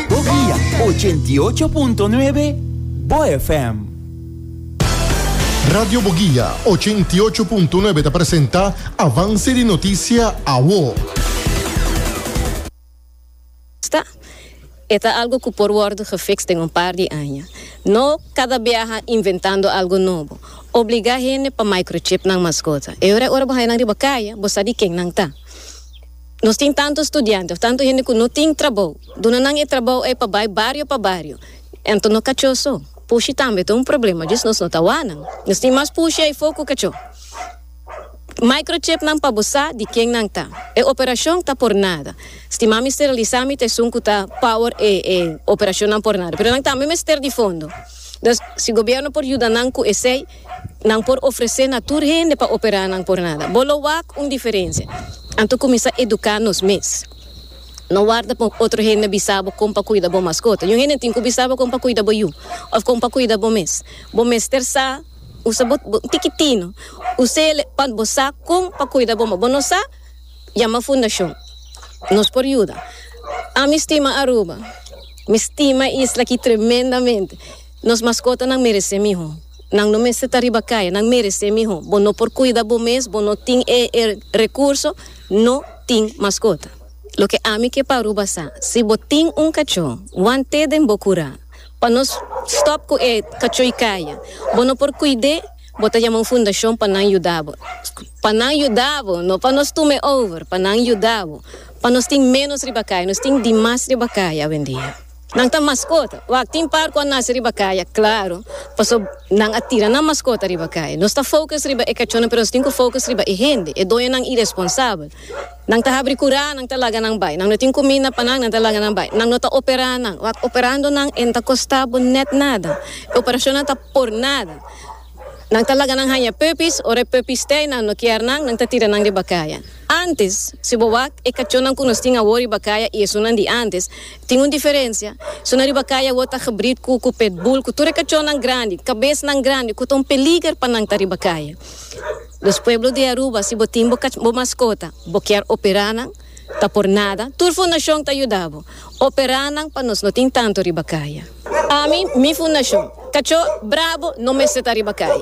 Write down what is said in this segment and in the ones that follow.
Bovia 88.9 Bo FM. Radio Bogia 88.9 ta presenta Avance di Noticia Awo. Sta. E ta algo cu por wordo gefixt den un par di aña. No cada biaha inventando algo nobo. Obliga hende pa microchip nan mascota. E hora e ora bo haya nan riba caya, bo sa di ken nan ta. Nos tin tantu studiante of tantu hende ku no tin trabou. Duna nan e trabou ei pa bai bario pa bario. Anto no kachó so. Pushi tambe ta un problema, djis nos no ta wak nan. Nos tin mas pushi eifo ku kachó. Microchip nan pa bo sa di ken nan ta. E operashon ta por nada. Stima mi steralisá mi ta esun ku ta power e e operashonnan por nada. Pero nan tambe mester di fondo. Dus si gobierno por yuda nan ku esei. Nan por ofresé na tur hende pa operá nan por nada. Bo lo wak un diferensia. Anto kuminsá eduká nos mes. No warda pa otro hende bisa bo kon pa kuida bo maskota. Yu hende tin ku bisa bo kon pa kuida bo yu òf kon pa kuida bo mes. Bo mester sa usa bo bo tikitino usele pa bo sa kon pa kuida bo. Bo no sa? Yama fundashon. Nos por yuda. Ami stima Aruba. Mi stima e isla aki tremendamente. Nos maskotanan meresé mihó. Nan no mester ta riba kaya, nan meresé mihó. Bo no por kuida bo mes, bo no tin e e rekurso, no tin maskota. Loke ami ke pa Aruba sa, si bo tin un kachó, wan té den bo kurá. Pa nos stòp ku e kachó i kaya, bo no por kuid'é, bo ta yama un fundashon pa nan yuda bo. Pa nan yuda bo, no pa nos tuma e over, pa nan yuda bo. Pa nos tin ménos riba kaya, nos tin dimas riba kaya awendia. Nan ta maskota. Wak tin par ku a nase riba kaya, klaru, paso nan a tira nan maskota riba kaya. Nos ta focus riba e kachónan pero nos tin ku focus riba e hende, e doñonan iresponsabel. Nan ta habri kurá, nan ta laga nan bai. Nan no tin kuminda pa nan, nan ta laga nan bai. Nan no ta operá nan. Wak operando nan e no ta kostá bo nèt nada. E operashonnan ta por nada. Nan ta laga nan haña puppies, ora e puppies tè i nan no kier nan, nan ta tira nan riba kaya. Ántes, si bo wak e kachónan ku nos tin awor riba kaya i esunnan di ántes, Tin un diferensia. Zona riba kai awor ta gebrid cu cu petbull cu tur e cachonnan grandi, cabesnan grandi cu ta un peliger pa nan ta riba kai. Dos pueblo di Aruba si bo tin bo cach bo mascota bo kier opera nan ta por nada tur fundacion ta yuda bo opera nan pa nos no tin tanto riba kai. Ami mi fundacion cacho brabo no mester ta riba kai.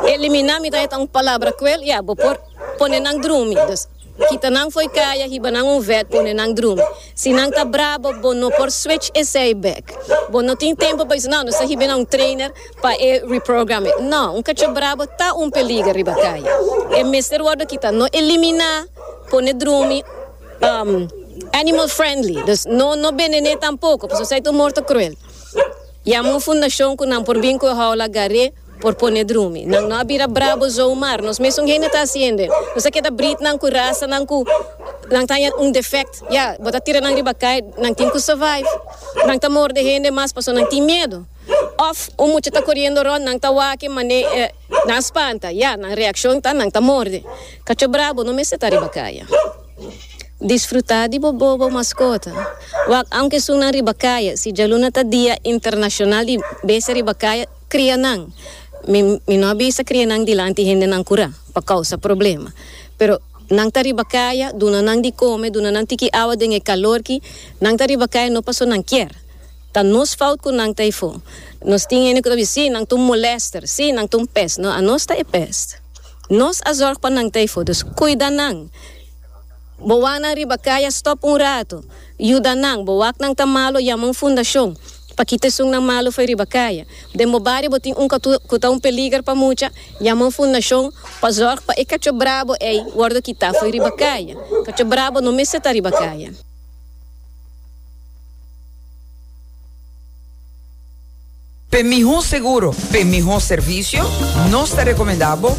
Elimina mi ta e ta un palabra cruel ya bo por pone nan drumi dos. Kita nan fo'i kaya hiba nan un vek pone nan drumi. Si nan ta brabo bo no por switch esei bek. Bo no tin tempo pa bisa, No, nos ta hiba na un trainer pa e reprogram e. No, un kachop brabo ta un peliger riba kaya. E mester wordo kita, no eliminá pone drumi um animal friendly. Dus no no benené tampoko, pasobra esei ta un morto cruel. Yama un fundashon ku nan por bin ku e houla gar'é. Por pone drumi. Nan no a bira brabo zo mar nos mesun hende ta hasiende. Nos a keda britnan ku rasanan ku nan taña un defect. Ya, bo ta tira nan riba kai, nan tin ku survive. Nan ta morde hende mas paso nan tin miedu. Òf un mucha ta koriendo rònt, nan ta wak-e manera e nan a spanta. Ya, nan reakshon ta nan ta morde. Kacho brabo no mester ta riba kaya. Disfrutá di bo bobo maskota. Wak aunke esun nan riba kaya. Si djaluna ta Dia Internashonal di Bestia Riba Kaya. Crianan. Mi mi no a bisa crianan dilanti hendenan curá pa causa problema. Pero nan ta riba caya, duna nan di come, duna nan tiki awa den e calorki. Nan ta riba caya no paso nan kier. Ta nos fout cu nan ta efo. Nos tin hende cu ta bisa, sí, nan ta un molester, sí, nan ta un pest. No, anos ta e pest. Nos a zorg pa nan ta efo. Dus cuida nan. Bo wak nan riba caya stop un rato. Yuda nan. Bo wak nan ta malo, yama un fundacion. Pa kita esunnan malu fo'i riba kaya. Den bo bario bo tin un katu ku ta un peliger pa mucha? Yama un fundashon pa zòrg pa e kacho brabo ei wòrdu kitá fo'i riba kaya. Kacho brabo no mester ta riba kaya. P'e mihó seguro, p'e mihó servisio, nos ta rekomendá bo.